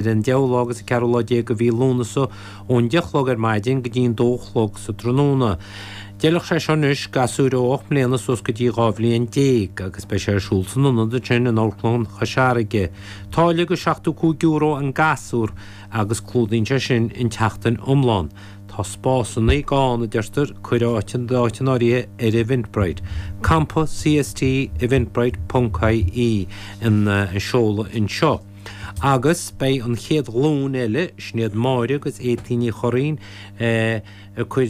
ar an deichiú lá agus an ceathrú lá déag de mhí Lúnasa ón deich a chlog ar maidin go dtí an dó a chlog sa tráthnóna. D'fheilfeadh sé seo anois, gasúir ó ocht mbliana suas go dtí dhá bhliain déag, agus beidh sé ar siúl san ionad ansin in Amharclann Chois Fharraige. Táille de seachtó cúig euro an gasúr agus clúdaíonn sé sin an tseachtain iomlán. Tá spásanna gann, a deirtear, cuir d'áit in áirithe ar Eventbrite. Campa CST, eventbrite ponc IE an seoladh anseo. agus beidh an chéad ghlúin eile, Sinéad Máire agus Étáin Ní Churraoin, ag cur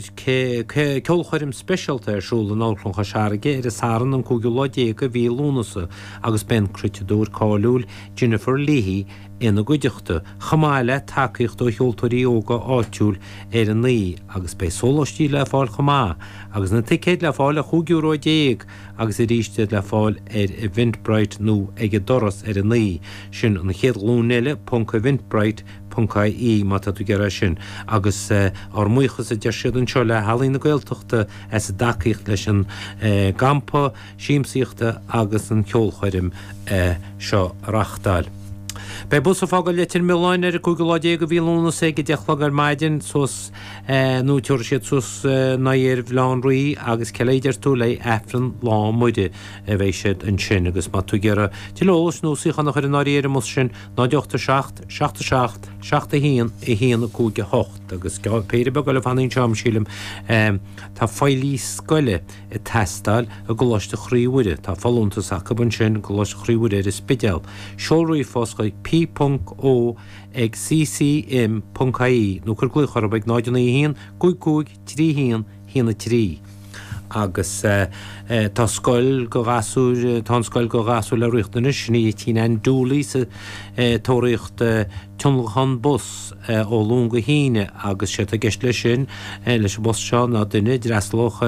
ceolchoirm speisialta ar siúl in Amharclann Chois Fharraige ar an Satharn an cúigiú lá déag de mhí Lúnasa agus beidh an cruiteadóir cáiliúil Jennifer Leahy ina gcuideachta, chomh maith le tacaíocht ó cheoltóirí óga áitiúil ar an oíche agus beidh sóláistí le fáil chomh maith agus na ticéid le fáil ar chúig euro déag. agus arís iad le fáil ar Eventbrite nó ag an doras ar an oíche. Sin an chéad ghlúin eile, ponc, eventbrite, ponc, ie má tá tú ag iarraidh é sin. Agus ár mbuíochas, a deir siad anseo, le hEalaín na Gaeltachta as a dtacaíocht leis an gcampa siamsaíochta agus an cheolchoirm seo a reáchtáil. Beidh bus ag fágáil Leitir Mealláin ar an 15 lá de mhí Lúnasa ag 10 a chlog ar maidin suas. nó tabharfaidh siad suas a n-aghaidh ar Bhaile Átha an Rí agus ce leith deir tú le aifreann lá Muire a bheidh siad ansin agus má tá tú ag iarraidh dul leo is nó suíochán a chur in áirithe ar an mbus sin 0 8 7 7 7 7 1 1 5 8 agus péire beag eile fanta anseo agam sílim tá feighlí scoile ag teastáil i gColáiste Chroí Mhuire tá folúntas acu ansin i gColáiste Chroí Mhuire ar an Spidéal seol ríomhphost chuig p.o. ag CCIM.ie nó cuir glaoch orthu ag 091 55 31 1 3. Agus tá scoil do ghasúir, tá an scoil do ghasúir le riachtanais i dTigh Nan Dooley ag tóraíocht tionlacan bus ó Luan go hAoine agus séard atá i gceist leis sin, leis an bus seo ná duine, dreaslach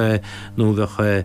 nó a bheadh,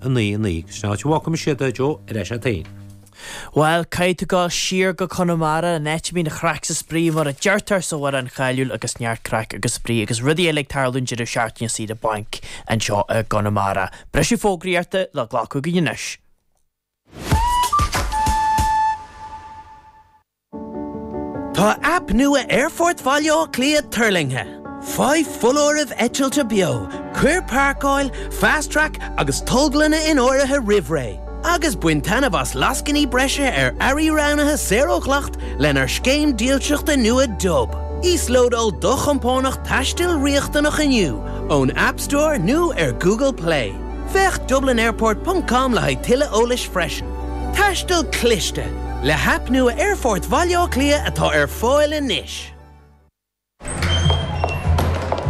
9, 9, Ceisteanna Áit, Walkm 6, 10, Joe, Ar ais agat féin? Bhuel, caithfidh tú dul siar go Conamara, an áit a mbíonn an chraic 's an spraoi, mar a deirtear san amhrán cáiliúil agus neart craic agus spraoi agus rudaí eile ag tarlú an deireadh seachtaine saoire bainc anseo i gConamara. Briseadh fógraíochta le glacadh againn anois. Tá aip nua Aerfort Bhaile Átha Cliath tuirlingthe. Faigh foláirimh eitilte beo, cuir páirceáil, Fast Track agus tolglanna in áirithe roimh ré, agus bain taitneamh as lascainí breise ar earraí roghnaithe saor ó dhleacht lenár scéim dílseachta nua Dub. Íoslódáil do chompánach taistil riachtanach inniu ón App Store nó ar Google Play. Féach dublinairport ponc com le haghaidh tuilleadh eolais freisin. Taisteal cliste, Le haip nua Aerfort Bhaile Átha Cliath atá ar fáil anois.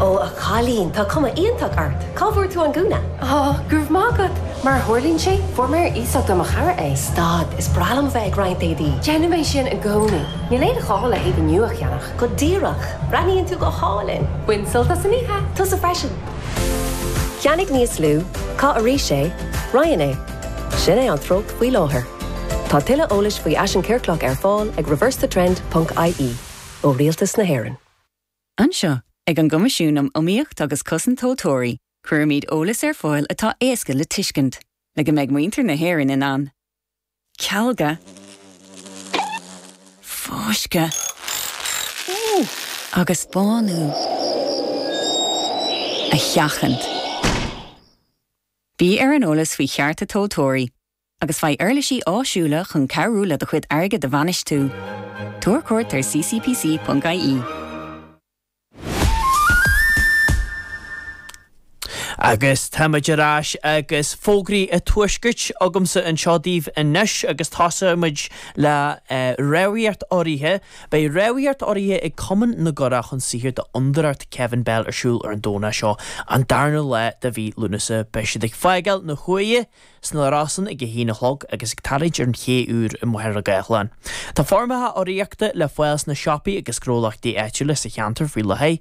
Ó, a chailín, tá cuma iontach ort. Cá bhfuair tú an gúna? Ó, go raibh maith agat. Mar a tharlaíonn sé, fuair mé ar iasacht ó mo chara é. Stad, is breá liom a bheith ag roinnt éadaí. Déanaim é sin i gcónaí. Níl aon ghá le héadaí nua a cheannach. Go díreach. Breathnaíonn tú go hálainn. Bain sult as an oíche. Tusa freisin. Ceannaigh níos lú, caith arís é, roinn é. Sin é an treocht faoi láthair. Tá tuilleadh eolais faoi fhaisean ciorclach ar fáil ag reversethetrend ponc ie ó Rialtas na hÉireann. Anseo ag an gCoimisiún um Iomaíocht agus Cosaint Tomhaltóirí, cuirimid eolas ar fáil atá éasca le tuiscint, le go mbeidh muintir na hÉireann in ann, cealgadh, fáisceadh agus bánú a sheachaint. Bí ar an eolas faoi chearta tomhaltóirí agus faigh uirlisí áisiúla chun cabhrú leat do chuid airgid a bhainistiú. Tabhair cuairt ar ccpc.ie. Agus tá muid ar ais agus fógraí an Tuaiscirt agamsa anseo daoibh anois agus tosóimid le Rámhaíocht Urraithe. Beidh Rámhaíocht Urraithe ag Cumann na gCurach chun sochair d'Fhondúireacht Kevin Bell ar siúl ar an Domhnach seo, an darna lá de mhí Lúnasa. Beidh siad ag fágáil na hUaighe sna Rosann ag a haon a chlog agus ag tarraingt ar an ché úr i Machaire Gathlán. Tá foirmeacha urraíochta le fáil sna siopaí agus gnólachtaí áitiúla sa cheantar faoi láthair.